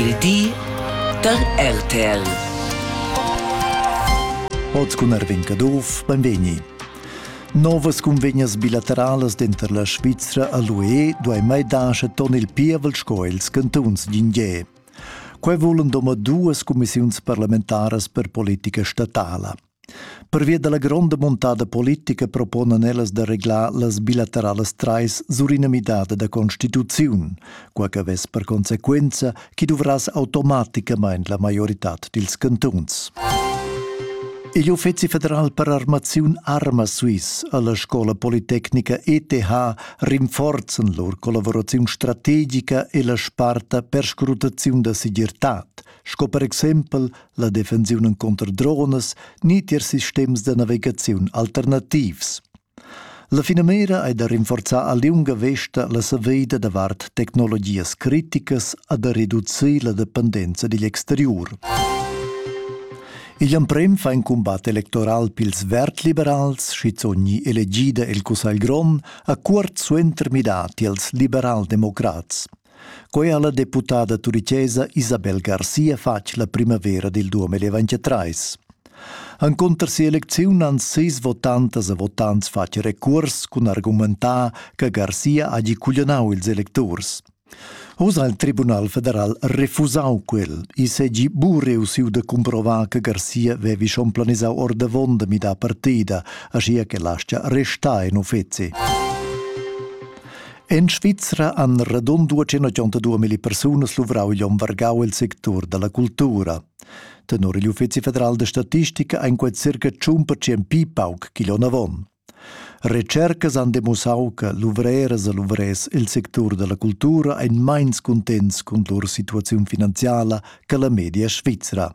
Il di da RTL. Oz cun Arvin Caduff, benvegni. Novas cunvegnas bilateralas denter la Svizra e l'UE duei mai dar ton il pievel sco ils cantuns d'Ingie. Quei vulan domadduas cumissiuns parlamentaras per politica statala. Pervia dalla gronda muntada politica proponan ellas da reglar las bilateralas trais sur ina midada da constituziun, quai che vess per consequenza chi duvrass automaticamain la maioritad dils cantuns. Igl Uffizi federal per armaziun Arma Swiss alla scola politecnica ETH rinforzen lur collaboraziun strategica e la sparta per scrutaziun da segirtad, sco per exempel la defensiun encunter dronas ni tier sistems da navigaziun alternativs. La finamira è da rinforzar a liunga vesta la saveida davart tecnologias criticas a da reducir la dependenza digl exterior. Igl emprem fa in combat electoral pils vert-liberals, schizogni elegida el Cussagl Grond, a cuort suenter midati als liberal-democrats. Quei ha la deputada turicesa Isabel Garcia fatg la primavera dil 2023. Encunter sia elecziun han sis votantas e votants fatg recuors cun argumentar che Garcia hagi cuglionau ils electurs. Oz ha il Tribunal federal refusau quel e segi bu reussiu da cumprovar che Garcia vevi schon planisau ordavon da midar partida, aschia che lascia restar in uffeci. En Svizra han radund 282 persunas luvrau igl onn vargau il sectur dalla cultura. Tenor igl Uffizi federal da statistica ein quei circa 100% pli pauc ch'igl onn avon. Retschercas han demussau che luvreras e luvrers il sectur dalla cultura ein meins cuntents cun lur situaziun finanziala che la media svizra.